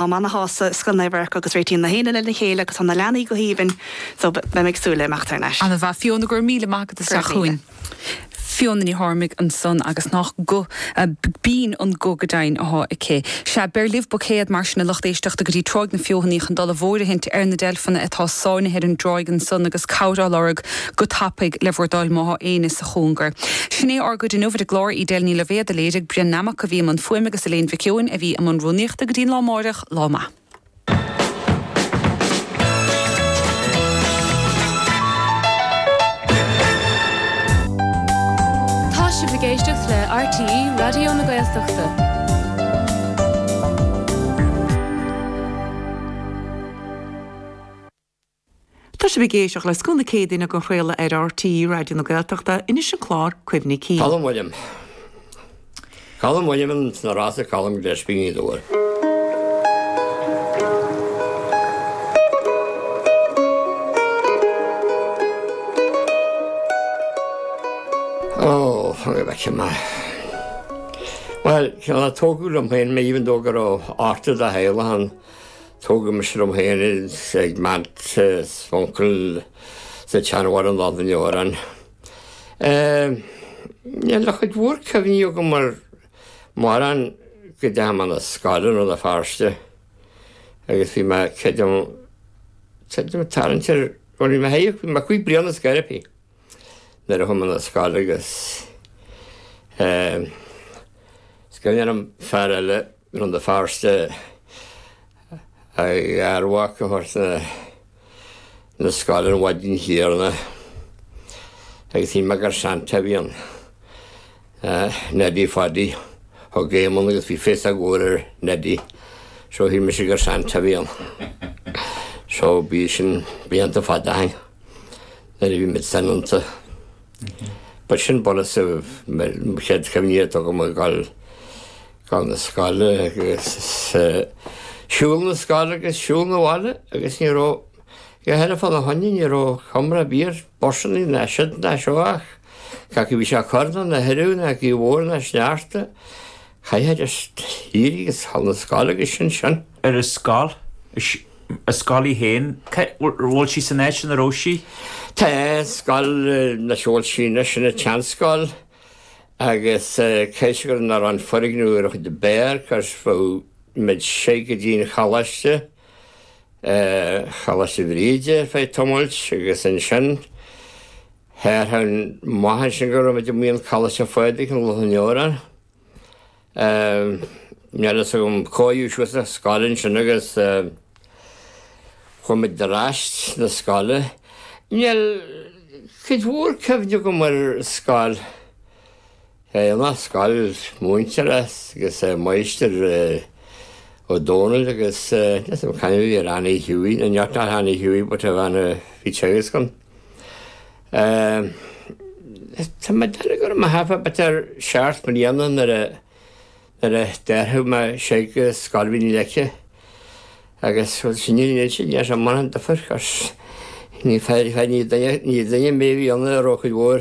Am ana shásta, scoth radhairc agus réitíonn na héinne lena chéile agus tá na leanaí go haoibhinn so beidh mé ag súil le imeacht thar n-ais. Ana mhaith Fiona, go raibh míle maith agat as teacht chugainn. Fiona Ní Tháirmigh ansan agus nách guth binn an guth go deimhin athá aici. Sea, beir libh buicéád mar sin a lucht éisteachta go dtí Tráigh na Feothanaí chun dul i bhfóirithint ar na deilfeanna atá sáinnithe ar an dtráigh ansan agus cabhair á lorg go tapaidh le bhur dtoil má thá éinne sa chóngar. Sin é ár gcuid inniu ar an gclár, Edel Ní Loibhéad do léirigh, Brian Nammock a bhí i mbun fuaime agus Elaine Mhic Eoin a bhí i mbun rúnaíochta. Go dtí an lá amárach, lá maith. Tá sibh ag éisteacht le RTÉ Raidió na Gaeltachta. Tá sibh ag éisteacht le Scoth na Céadaoine den chraoladh ar RTÉ Raidió na Gaeltachta. Anois, an clár Cuimhní Cinn. Colm Uilliam Colm Uilliam an na rása Colm Gillespie ní dóigh. Ó fág bheith sin mar. Well se a tóú am féin mé hín dógur ó áta a héile an Tógadh mise liom féin ag m'aint is m'uncal sa tseanbhaile in Loch an Iúir ann. Níl a chuid mhór cuimhní agam ar mórán go deachaigh mé 'na scoile i Rann na Feirste agus bhí mé cead am cead am tarraingt ar bhuel bhí mé hé bhí mé cúig bliana ar scor ar bith nuair a chuaigh mé 'na scoile agus is cuimhin liom fear eile Rann na Feirste, a gharmhac a thabhairt 'na scoile an mhaidin chéanna agus shíl mé gur Santa a bhí ann, Neidí Phaidí. Thug Éamon agus bhí féasóg mhór ar Neidí. So shíl mise gur Santa a bhí ann. So bhí sin blianta fada ó shin nuair a bhí muid soineanta. Ba sin bunús mo chéad chuimhní atá agam ag gabháil Gabháil na scoile agus siúl na scoile agus siúl na bhaile agus ní raibh dóigh eile fána choinne ní raibh comhrá ar bith ar busannaí ná siúd ná seo ach cé acu bhí sé ag cur ná ina thuradh ná gaoth mhór ná sneachta, chaithfidís éirí agus dhul 'na scoile agus sin sin. An scoil, an scoil í féin, bhfuil sí san áit ina raibh sí? Tá, scoil ina bhfuil sí anois, sin an tseanscoil. Agus cé gur nár fhan foirgneamh úr a chuid beart, cuireadh muid síos go dtí an Choláiste, Choláiste Bhríde feadh tamailt agus ansin tharrtháil maith ansin go raibh muid amuigh i gColáiste Phádraig in Loch an Iúir ann. Ehm, níl a fhios agam cá fhiú siúd sa scoil ansin agus, eh, chuaigh muid ar ais na scoile. Níl cuid mhór cuimhne agam ar scoil. Eh, an as scoil múintear as agus, eh, máistir, eh, Ó Dónaill agus, eh, níl a fhios agam cá hainm a bhí ar Annie Hughie, nach ea, ná Annie Hughie but a bhean a bhí ag teagasc ann. Tá mé ag déanamh go raibh mé thart fá b'fhéidir seacht mbliana nuair a nuair a d'athraigh mé soir go Scoil Mhín na Leice agus bhuel sin níl sin níl sé mórán difir cos ní féidir féidir ní duine ní duine mé a bhí ann a raibh cuid mhór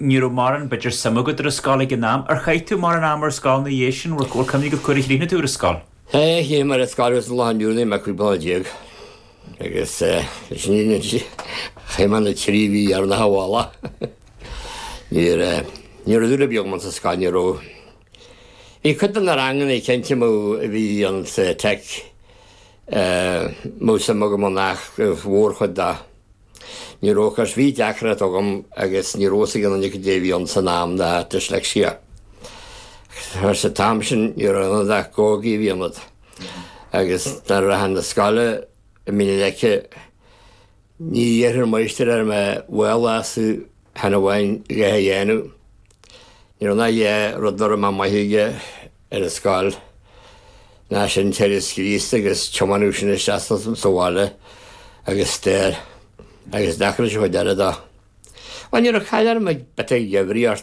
Ní raibh mórán b'fhéidir suim agat ar an scoil ag an am. Ar chaith tú mórán ama ar scoil ina dhiaidh sin? Bhfuil cuimhne agat cá huair a chríochnaigh tú ar an scoil? Aye, chríochnaigh mé ar an scoil agus an lá inniu anois mé cúig bliana déag agus leis an fhírinne a inse chaith mé na trí mhí sa bhaile. Ní raibh ní raibh dúil ar bith agam sa scoil ní raibh. Bhí cuid de na ranganna cinnte nuair a bhí mé sa tech eh, mó suim agam ann ach an mhórchuid de. Ní raibh cos bhí deacracht agam agus ní raibh a fhios ag aon duine caidé a bhí ann san am ná dyslexia. Mar san am sin ní raibh ionat ach gógaí a bhí ionat agus nuair a d'athraigh mé na scoile i Mín na Leice ní dhéarfadh an máistir air mé baol astu cheana amháin léamh a dhéanamh. Ní raibh ann ach dhá rud a raibh mé maith aige. ar an scoil. Ná sin Teagasc Críostaí agus tiomáineadh sin isteach sa bhaile agus stair agus deacracha dá deire do. Bhuel, ní raibh caill orm ag b'fhéidir ag uimhríocht.